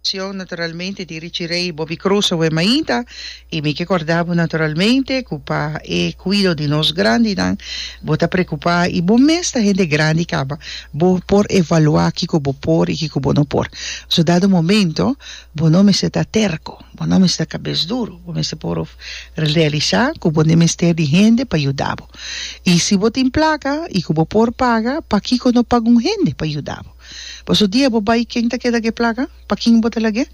Cion naturalmente di Richie Ray y Bobby Cruz awe mainta y mi ke corda bo naturalmente cu pa e cuido di nos grandinan bo ta preocupa y bo mes ta hende grandi caba bo por evalua kico bo por y kico bo no por so dado momento bo no mester ta terco bo no mester ta cabes duro bo mester por realisa cu bo ne mester di hende pa yuda bo y si bo tin placa y cu bo por paga pakico no paga un hende pa yuda bo. Paso dia bo bai ken ta keda ke plaka? Pa kin bo ta lag'e?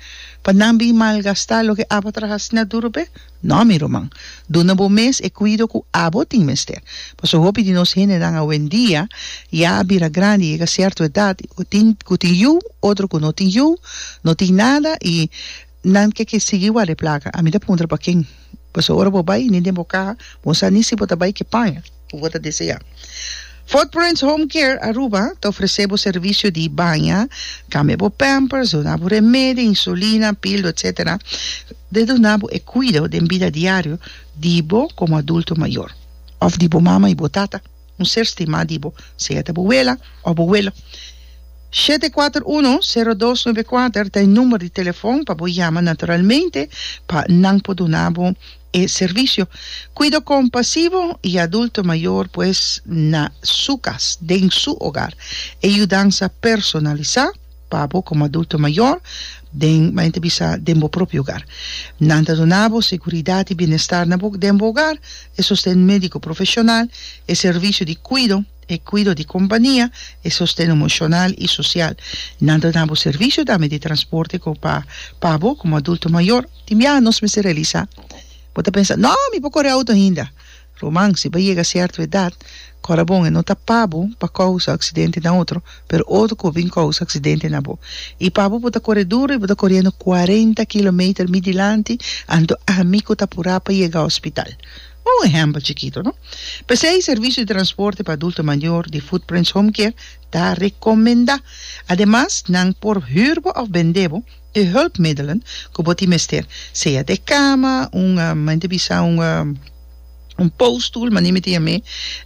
Pa nan bin malgastá loke abo a traha snat duro p'e? No mi ruman. Duna bo mes e kuido ku abo tin mester. Paso hopi di nos hendenan awendia ya a bira grandi, yega sierto edat, tin ku tin yu, otro ku no tin yu, no tin nada i Nan ke ke sigui ward'e placa. Ami ta puntra pa ken. Paso ora bo bay ni den bo caha bo no sa ni si bo ta bay ke paña cu bo ta desea. Footprints Home Care Aruba ta ofrece bo servicio di baña, cambia bo pampers, duna bo remedio, insulina, pildo, etc. Te duna bo e cuido den bida diario di bo como adulto mayor. Of di bo mama y bo tata. un ser stimá di bo, sea ta bo wela òf bo welo. Shete kuater uno, sero dos nube kuater ta e number di telefòn pa bo yama naturalmente pa nan por duna bo e servisio. Kuido kompasivo i adulto mayor pues na su kas, den su ogar. E yudansa personalisá. Pa bo como adulto mayor, den, m'a inta bisa, den bo propio hogar. Nan ta duna bo seguridad y bienestar na bo, den bo hogar, e sosten medico profesional, e servicio di cuido, e cuido di compania, e sosten emocional y social. Nan ta duna bo servicio tambe di transporte co pa pa bo como adulto mayor. Tin bia nos mester realisa, bo ta pensa, No, mi por core auto ainda. Ruman, si bo a yega sierto edat, kòrda bon e no ta pa bo pa kousa aksidente na otro, pero otro ku a bin kousa aksidente na bo. I pa bo, bo ta kore duru i bo ta koriendo kuarenta kilometer mi dilanti anto ami ku ta apurá pa yega hospital. Un ehèmpel chikito, no? P'esei, servisio di transporte pa adulto mayor di Footprints Home Care ta rekomendá. Ademas, nan por hür bo òf bendé bo, E hulpmiddelen ku bo tin mester, sea den kama, un mente bisa un un pousstoel, mani mi tin amé,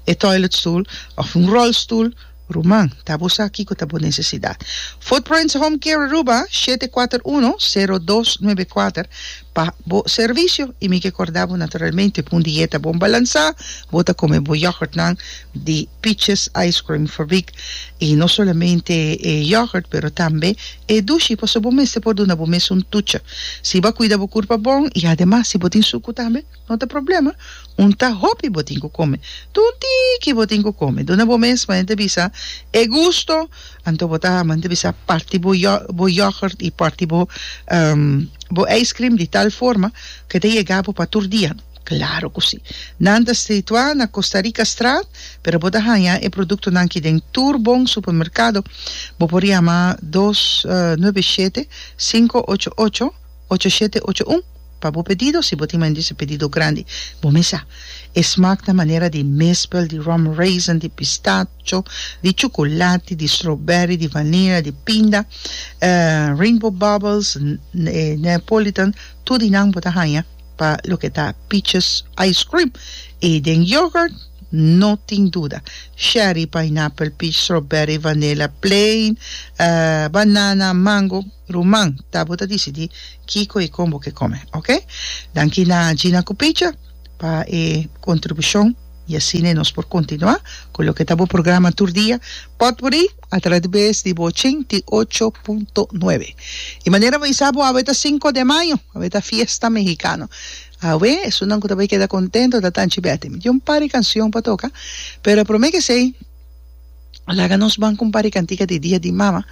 e toiletstoel òf un rolstoel, ruman, ta bo sa kiko ta bo nesesidat. Footprints Home Care Aruba, shete kuater uno, sero dos nuebe kuater, pa bo servisio i mi ke korda bo naturalmente ku un dieta bon balansá, bo ta kome bo yògùrtnan di Peaches Ice Cream Fabriek i no solamente e yògùrt pero tambe E dushi pasobra bo mester por duna bo mes un tucha. Si bo a kuida bo kurpa bon i ademas si bo tin suku tambe no ta problema. Un ta hopi bo tin ku kome. Tur un tiki bo tin ku kome. Duna bo mes manera ta bisa e gusto anto bo ta manera ta bisa parti bo bo yogurt i parti bo bo ijskrim di tal forma ku e ta yega bo pa tur dia. Claro cu si. Nan ta strituá na Costa Rica straat, pero bo ta haña e productonan aki den tur bon supermercado. Bo por yama dos nuebe shete, cinco ocho ocho, ocho shete ocho un pa bo pedido, si bo tin mayormente su pedido grandi. Bo mes sa, e smaak ta manera di mispel, di rum raisin, di pistacho, di chuculati, di strawberry, di vanilla, di pinda, rainbow bubbles, Neapolitan, tur di nan bo ta haña. Pa loke ta peaches ice cream y den yoghurt no tin duda, sherry, pineapple, peach, strawberry, vanilla, plain, banana, mango, ruman ta bo ta dicidi kico y con bo ke come ok. Danki na Gina cu Picha pa e contribucion y asina nos por continua cu loke ta bo programa tur dia potpourri. atrabes di bo ochenta i ocho punto nuebe. E manera bo bisa bo awe ta sinku de mayo, awe ta fiesta mehikano. Awe esunnan ku ta bai keda kontento ta Tanchi Bètti. Mi tin un par di kanshon pa toka, pero promé kesei laga nos ban ku un par di kantika di Dia di Mama.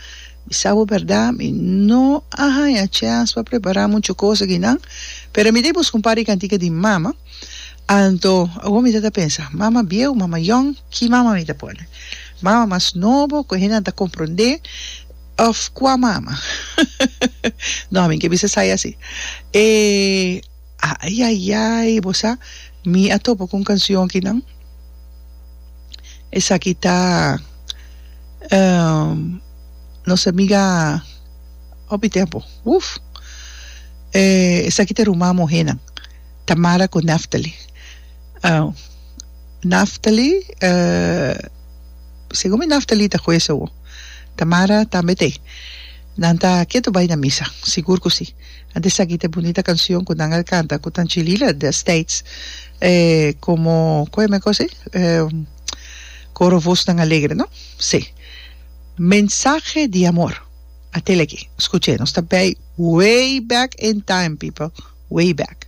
Bisa bo bèrdat, mi no a haña chèns pa prepará muchu kos akinan, pero mi ta buska un par di kantika di mama. Anto, awor mi ta ta pensa, mama bieu, mama yòn, ki mama mi ta pone? Mama mas nobo, ku hendenan ta komprondé, òf kua mama? Nò, mi ke bisa sai así. E, ayayay, bo sa, mi a topa ku un kansion aki nan. Esaki ta nos amiga hopi tempu, uf! Esaki ta rumá muhénan. Tamara ku Neftali. Neftali, segun mi Neftali ta hues awo. Tamara tambe ta ei. Nan ta ketu bai na misa, sigur ku si. Antes esaki ta e bunita kanshon ku nan a kanta ku Tanchi Lila destijds, komo ku e men kos ei? Koro Vosnan Alegre, no? Si. Mensahe di amor. A tele aki, skucha e, nos ta bai way back in time people, way back.